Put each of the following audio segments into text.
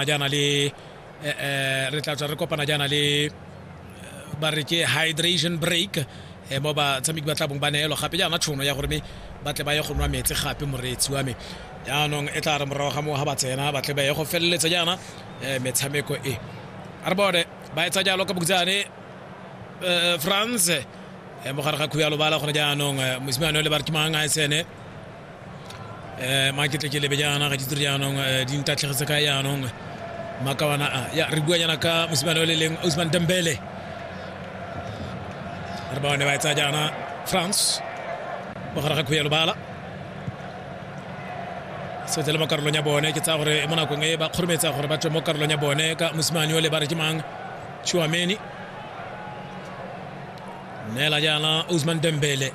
a jaana le eh, eh, re tla tswa re kopana jaana le eh, ba re ke hydration break eh, mo batshameki ba tlabong ba neelo gape jaana tšhono ya gore me ba tle ba ye go nwa metsi gape moreetsi wa me jaanong e tla re morago ga moo ga ba tsena ba tle ba ye go feleletsa jaana eh, metshameko e a re bone ba etsa jalo ka bokutsane eh, france eh, mo gare ga khuya lobala gone jaanong eh, mosimane o le ba re ke mang a e sene um ma ke tle ke lebe jaana ga ditiro jaanong eh, di ntatlhegetse ka jaanong makawana a ya re bua jaana ka mosimane o le leng osman dembele re ba one ba etsa jaana france mogare ga khuya lobala setse le mo karolong ya bone ke tsaya gore mo nakong e ba kgorometsa gore ba tswe mo karolong ya bone ka mosimane o le ba re ke mang chuameni neela jaana osman dembele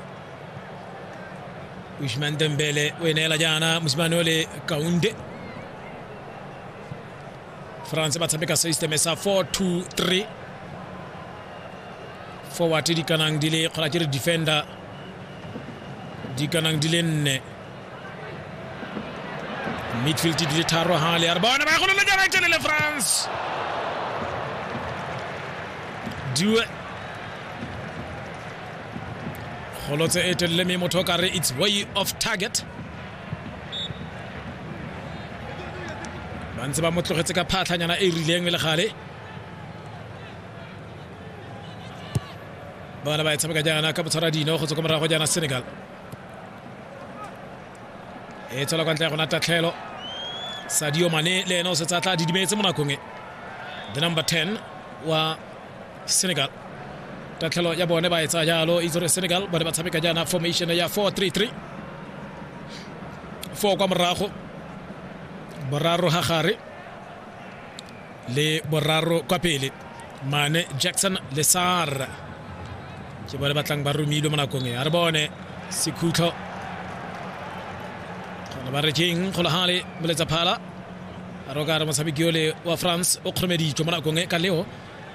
Usman Dembele wenela jaana mosimane o le kaunde france ba tshameka systeme sa 423 forward di kanang di le kgona ke re defender di kanang di le nne midfield di le tharo ha le ya re bona ba golo le jana tšene le france due golotse e telele mme motho o ka re its way of target ba ntse ba mo tlogetse ka phatlhanyana e rileng le gale bana ba e tshameka jaana ka botshwara dino go tswa ko morago jaana senegal e tswela kwa ntle ya gona tatlhelo sadio mane le ene o setse a tla didimetse mo nakong e the number 10 wa senegal tatlhelo ya bone ba e tsaya jalo itse gore senegal bone ba tshameka jaana formation ya 433 four kwa morago boraro ga gare le boraro kwa pele mane jackson lesar ke bone batlang ba romilwe mo nakong e a re bone sekhutlho gona ba re keng golagale moletsa phala a re o ka re motshameki ole wa france o kgoromeditswe mo nakong e ka leo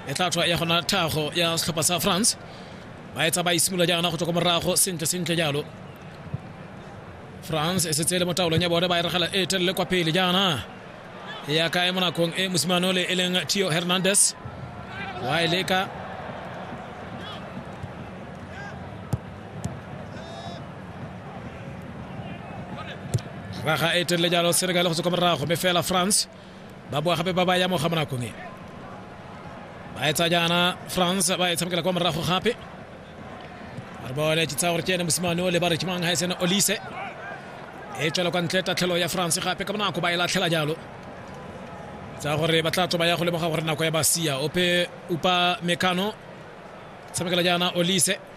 e tla tswa ya gona thago ya setlhopha sa france ba etsa ba isimolola jaana go tswa ko morago sentle sentle jalo france e setse e le mo taolong ya bone ba e regela e telele kwa pele jaana ya kae mo nakong e mosimane ole e leng tio hernandez wa e leka raga e telele jalo senegal go tswa kwa morago mme fela france ba boa gape ba ba ya mo ga monakong e ba etsa jaana france ba e tshamekela kwa morago gape re bone ke tsaya gore ke ene mosimane o le ba re ke mang ga e sene olise e tswela kwa ntle tatlhelo ya france gape ka bonako ba e latlhela jalo tsa gore ba tla tso ba ya go lemoga gore nako ya ba sia ope upa mekano tshamekela jaana olise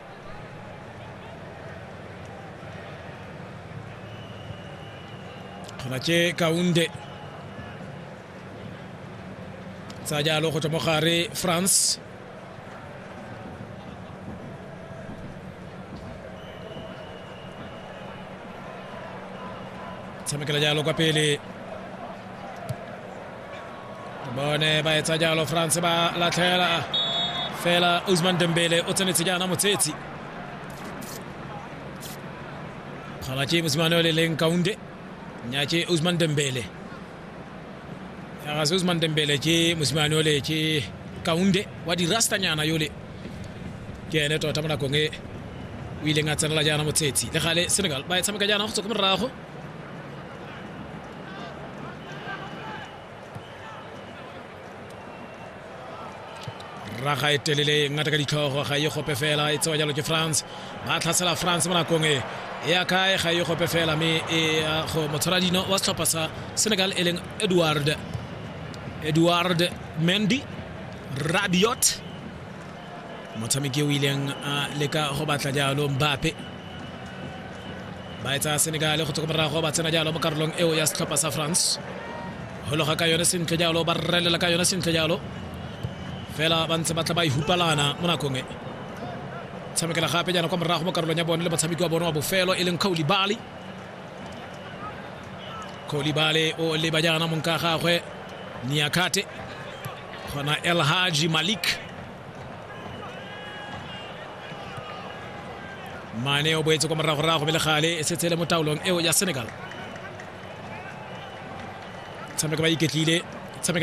kgona tše kaunde tsa jalo go tswa mo gare france tshamekela jalo kwa pele bone ba etsa jalo france ba latlhela fela usman dembele o tsenetse jaana motshetsi kgala ke mosimane o le leng kaunde nya ke usman dembele yagase usman dembele ke mosimane ole ke kaunde wa dirastanyana yole ke ene tota mo nakong e o ileng a tsenela jaana motshetsi le gale senegal ba e tshameka jaana go tswa ko morago raga e telele ngata ka ditlhogo ga e gope fela e tsewa jalo ke france ba tlhasela france mo nakong e e ya kae ga e gope fela mme e ya go motshwara dino wa setlhopha sa senegal e leng edward edward mendy radiot motshameki o ileng a leka go batla jalo mbape ba e tsaya senegale go tsoko morago ba tsena jalo mo karolong eo ya setlhopha sa france hologa ka yone sentle jalo ba rrelela ka yone sentle jalo fela ba ntse ba tla ba ihupalana mo nakong e tshamekela gape jaana kwa morago mo karolong ya bone le motshameki wa bone wa bofelo e leng kgaoli bali kgaoli bale o leba jaana mong ka gagwe niakate Kona El Haji Malik. Mane o boetse kwa moragorago mele gale e setse le mo taolong eo ya Senegal. Tshameka ba iketlile tshamekela